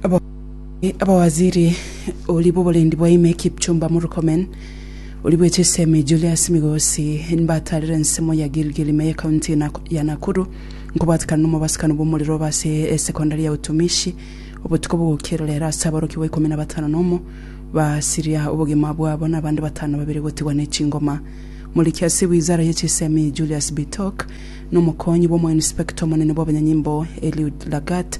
Ababwati abawaziri oria bw'oborendi bwa ime Kipchumba Murkomen, oria bwe chisemi Julius Migosi nbataarire ensemo ya Gilgil ime y'ekaunti ya Nakuru nkobwatikana nomobasukani bw'omorero obe ase esekondari ya Utumishi obotuko bogokira rero ase aborokigwa ikomi na batano nomo basiria obogima bwabo na abande batano babere gotigwa nechingoma. Moriki ase wizara ye chisemi Julius Bitok nomokonyi bw'omoinspector omonene bw'abanyanyimbo Eliud Lagat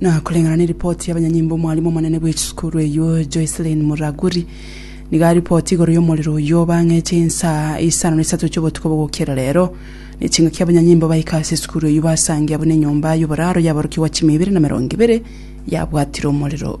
Na koreng'ana neripoti y'abanyanyimbo omwarimu omonene bwe chisukuru eyio Joycelyn Muraguri nigo aripoti igoro y'omorero oyio bang'eche insaa isano na isato chi'obotuko bogokera rero, ne chingaki abanyanyimbo baika ase esukuru eyio basangia buna enyomba y'oboraro yaborokigwa chimia ibere na merongo ibere yabwatire omorero.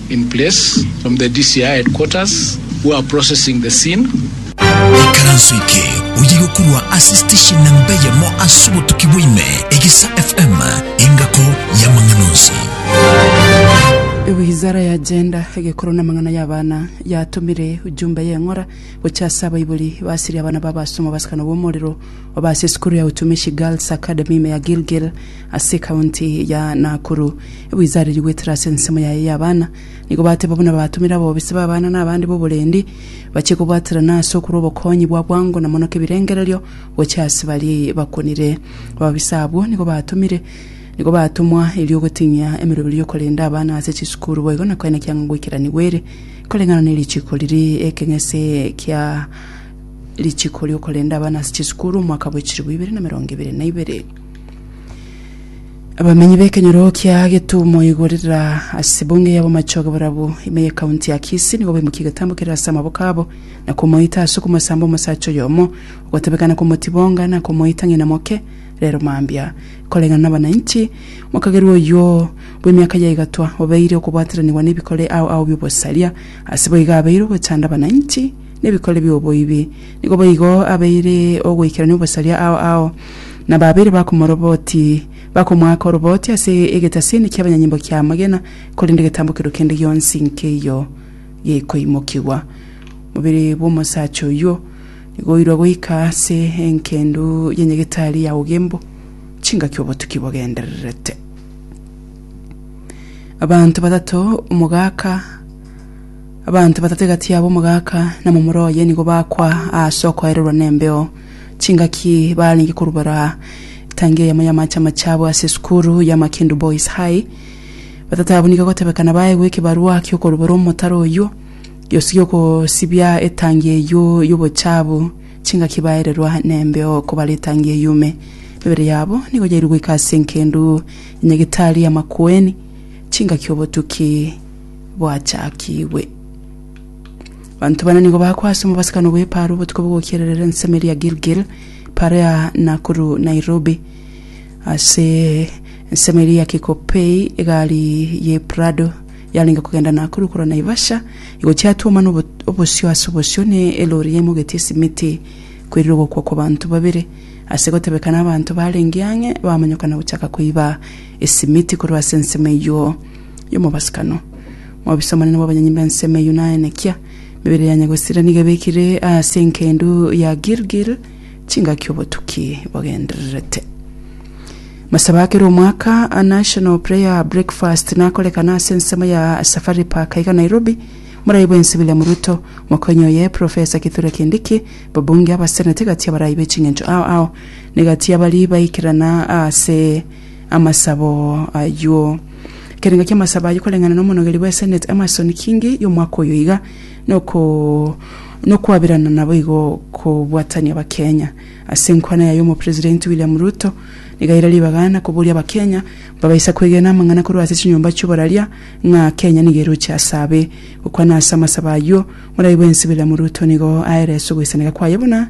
in place from the DCI headquarters who are processing the scene. Ekaranso eke oye gokorwa ase station namba eyemo ase obotuki bwaime, Egesa FM, engako y'amang'ana onsi. Wizara ya Gender, Egekoro na Amang'ana y'Abana yatomire ujumbe y'eng'ora gochia ase abaibori basirie abana b'abasomwa basikana b'omorero Oba ase esukuru ya Utumishi Girls Academy ime ya Gilgil ase ekaunti ya Nakuru. Ebuisa aria rigwetire ase ensemo yaye y'abana, nigo bateba buna babatumire abobisi b'abana na abande b'oborendi bachie kobwaterana ase okorwa obokonyi bwa bwango na mono kebirengererio gochia ase baria bakunire. Ababisa abwo nigo batumire nigo batumwa erio goting'ia emeroberi y'okorenda abana ase chisukuru boigo na koenekia ng'a goikeraniwe ere koreng'ana nerichiko riria ekeng'ese kia Richiko riokorenda abana ase chisukuru omwaka bwa chilifu ibere na emerongo ebere na ibere. Abamenyi b'ekenyoro kia Getumo igo rira ase bunge yabo machoge borabu ime ye kaunti ya Kisii nigo baimukia egetambo kerere ase amaboko abo na komoita ase okomosamba omosacha oyomo ogotebekana komotibonga na komoita ng'ina moke rero mambia koreng'ana na abananchi mokagerwa oyio bw'emiaka ya igatwa obeire okobwatiranigwa n'ebikore ao ao bi'obosaria ase boigo abeire ogochanda abananchi nebikore bi'oboibi, nigo boigo abeire ogoikerania obosaria ao ao, na babeire bakomoroboti, bakomoaka oroboti ase egetasiini ki'abanyanyimbo ki'amagena, korende getambo keria kende gionsi nkeiyo gekoimokigwa. Omobere bw'omosacha oyio nigo oirwe goika ase engendu y'enyegetari ya Ugembo, chingaki obotuki bogendererete. Abanto batato, omogaka, Abanto batato egati yabo omogaka na momura oye nigo bakwa aase okoererwa nembeo. Chingaki barenge korubora etangi eyemo y'amache amache abwo ase esukuru ya Makindu Boys High. Batato abwo nigo egotebekana baegwe ekebarua ki'okorubora omotaro oyio gionsi gi'okosibia etangi eyio y'obochabu. Chingaki baererwa nembeo kobare etangi eyume. Emebere yabo nigo yairwe goika ase enkendu ya nyagetari amakueni chingaki obotuki. bwachakigwe. Banto bana nigo bagakwa ase omobasikano bw'epaaro obotuko bogokiererera ensemo eria Gilgil, epaaro ya Nakuru Nairobi. Ase ensemo eria ya Kikopey egari ye Prado yarenge kogenda Nakuru korwa Naivasha egochia Atwoma na obo- obosio ase obosio ne elori yaimogetie esimiti kwerire ogokwa kwa banto babere. Ase gotebekana abanto barenge ang'e bamanyokana gochaka koiba esimiti korwa ase ensemo eyio. y'omobasikano, mobisa omonene bw'abanyonyi b'ensemo eyio naye nekia, emebere ya Nyagosira nigo ebekire ase engendu ya Gilgil chingaki obotuki bogendererete. Masaba akere omwaka a National Prayer Breakfast nakorekana ase ensemo ya Safari Park iga Nairobi, Morai bw'ense William Ruto, Mokonyi oye Professor Kithure Kindiki, Babunge, Abaseneti gati y'abarai b'eching'encho ao ao, nigo gati y'abari baikerana ase Amasabo ayio. Ekerengo ki'amasabo ayio koreng'ana n'omonogeri bwe Senate Emmerson Kingi y'omwaka oyo iga noko nokwabirana naboigo kobwatania Abakenya. Ase enkwana yaye Omopresidenti William Ruto nigaire ribaga na koboria Abakenya mbabaisa kwegena amang'ana korwa ase chinyomba chi'oboraria ng'a Kenya nigo eroche ase abe. Gokwana ase amasabo ayio, Moraibwensi William Ruto nigo aerese ogoisaneka kwaye buna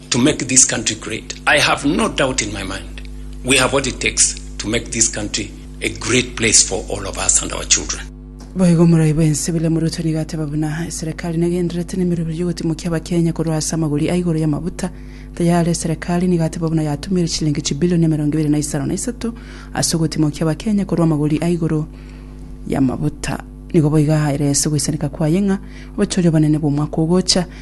to make this country great. I have no doubt in my mind we have what it takes to make this country a great place for all of us and our children. Boigo omorai bwense William Ruto nigo ateba buna eserekari negenderete nemeroberi y'ogotimokia abakenya korwa ase amagori a igoro y'amabuta tayare eserekari nigo ateba buna yatumeire chilingi chibilioni emerongo ebere na isano na isato ase ogotimokia abakenya korwa amagori a igoro y'amabuta nigo boiga ahaire ase ogoisanika kwaye ng'a obochoria obonene bw'omwaka ogocha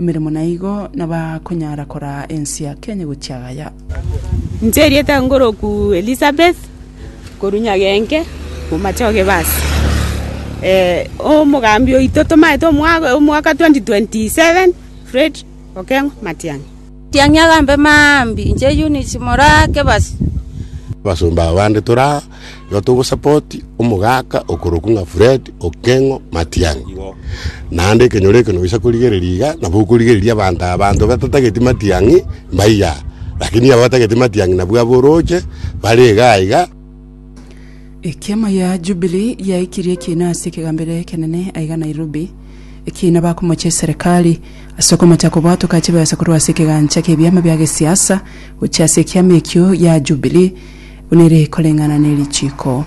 Emeremo na igo nabakonyara koraa ense ya Kenya gochia Gaya. Inche erieta nkoroku Elisabeth korwa Nyagenke omomache o Gebasi. Omogambi oito tomaete omwaka 2027 Fred Okeng'o Matiang'i. Matiang'i agambe mambia, inche Eunice moraa Gebasi. Abasomba abande toraa igo togosapoti omogaka okorokwa ng'a Fred Okengo Matiang'i. Igo. Naende ekenyoro eke noisa korigereria iga, nabo okorigereria abanto aba, abanto batatageti Matiang'i mbaiya, lakini aba batageti Matiang'i nabwo aba oroche bare iga aiga. Ekiama gia Jubilee giaikirie ekiina ase ekegambero ekenene aiga Nairobi, ekiina bakomocha eserekari ase okomocha kobwatoka chibesa korwa ase ekegancha ki'ebiama bia gesiasa gochia ase ekiama ekio gia Jubilee. Buna ere koreng'ana ne richiiko.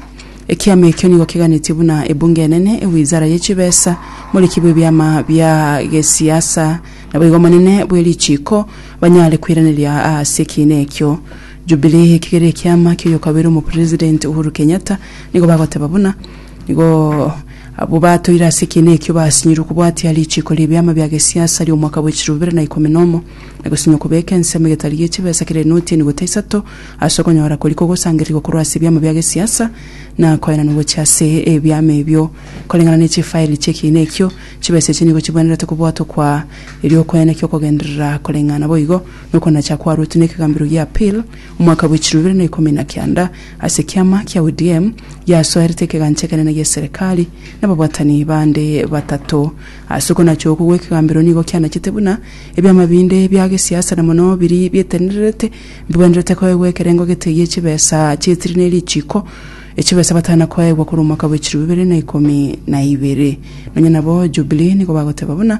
Ekiama ekio nigo keganetie buna Ebunge Enene, ewizara ye chibesa, moriki bw'ebiama bia gesiasa, naboigo omonene bwe richiiko banyare koiraneria ase ekiina ekio. Jubilee ekegere ekiama ki'oyokabeire omopresident Uhuru Kenyatta nigo bagoteba buna nigo abwo batoire ase ekiina ekio basinyirwe kobwatia richiiko ri'ebiama bia gesiasa ri'omwaka bwe chilebibere na ikomi nomo na gosinywa kobeka ensemo egetari gie chibesa kera enoti enigo taisato Ase okonyora korikwa ogosangererigwa korwa ase ebiamo bia gesiasa na koenanwa gochia ase ebiama ebio koreng'ana ne chifaeli chi'ekiina ekio, chibesa echi nigo chibwenerete kobwatwa kwa eri'okwenekia okogenderera koreng'ana boigo nokonacha kwaruetwe nekegambero gia Apil omwaka bwechiro ibere na ikomi na kianda ase ekiama kia ODM giasoerete ekegancha ekenene gi'eserekari nababwatani bande batato. Ase okonacha okwo gwekegambero nigo kianachete buna ebiama binde bia gesiasa na mono biri bietenererete Mbwenerete koegwa ekerengo gete gie chibesa chi'etiri ne richiiko, echibesa batana koegwa korwa omwaka bw'echiru bibere na ikomi na ibere. Nonya nabo Jubilee nigo bagoteba buna.